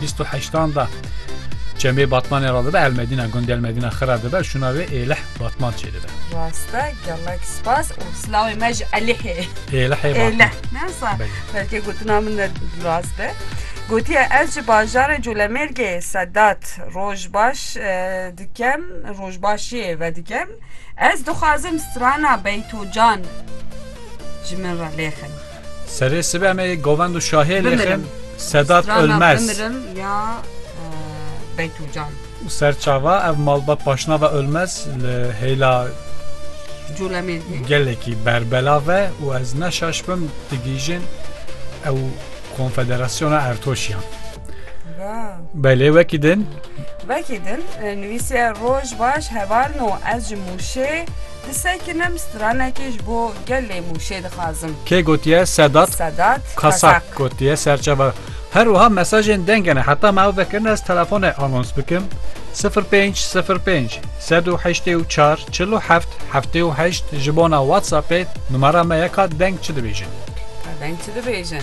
Bîst û heştan de Çemê Batmanê re dibe Elmedîna, gundê Elmedîna Xira dibe, şûna wê Êlih Batman çêdibe. Rast e, gelek spas û silawê me ji Elihê. Êlihê Batman. Êlih, ne sa? Belê. Belkê gotina min ne rast be. Gotiye ez ji bajarê Colemêrgê, Sedat, roj baş e, dikem, rojbaşiyê vedikim. Ez dixwazim strana Beytocan ji min re lêxin. Serê sibe me yê govend û şahê lêxin Bimirim. Sedat Strana Ölmez. bimirim ya e, Beytûcan. Û ser çava ev malbat paşnava Ölmez li hêla Colemêrgê. gelekî berbela ve û ez neşaş bim digihîjin ew konfederasyona Ertoşiyan. Wow. Belê wekî din Vekî din e, nivîsiye roj baş hevalno ez ji Mûşê Di se kinim stranekê ji bo gelê Mûşê dixwazim. Kê gotiye Sedat, Sedat Kasak gotiye serçeva. Her wiha mesajên denge ne heta me ew vekirin ez telefone anons bikim 0505 184 47 78 ji bona WhatsAppê numara me yeka deng çi dibêjin. Deng çi dibêjin.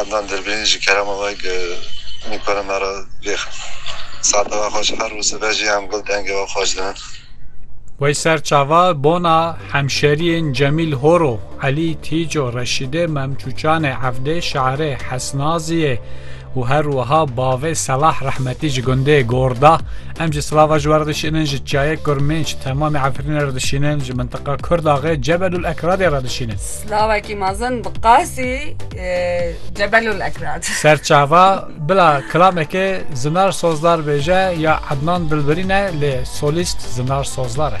Adnan Dirbirîn ji kerema we gi mîkora me re vêxif. Sata we xweş her û sibe jî em gul dengê we xweş dinin. Wey ser çava bona hemşeriyên Cemîl Horo, Elî Tîco, Reşîdê Memçûçanê, Evdê Şarê, Hesnaziyê û her wiha bavê Selah Rehmetî ji gundê Gorda em ji Silava ji we re dişînin ji çiyayê Kurmênc temamê Efrînê re dişînin ji mintiqa Kurdaxê Cebelûl Ekradê re dişînin. Lawekî mezin bi qasî Cebelul Ekrat. Serçava bila kilamekê Zinar Sozdar bêje ya Ednan Dilbirî ne lê solîst Zinar Sozdar e.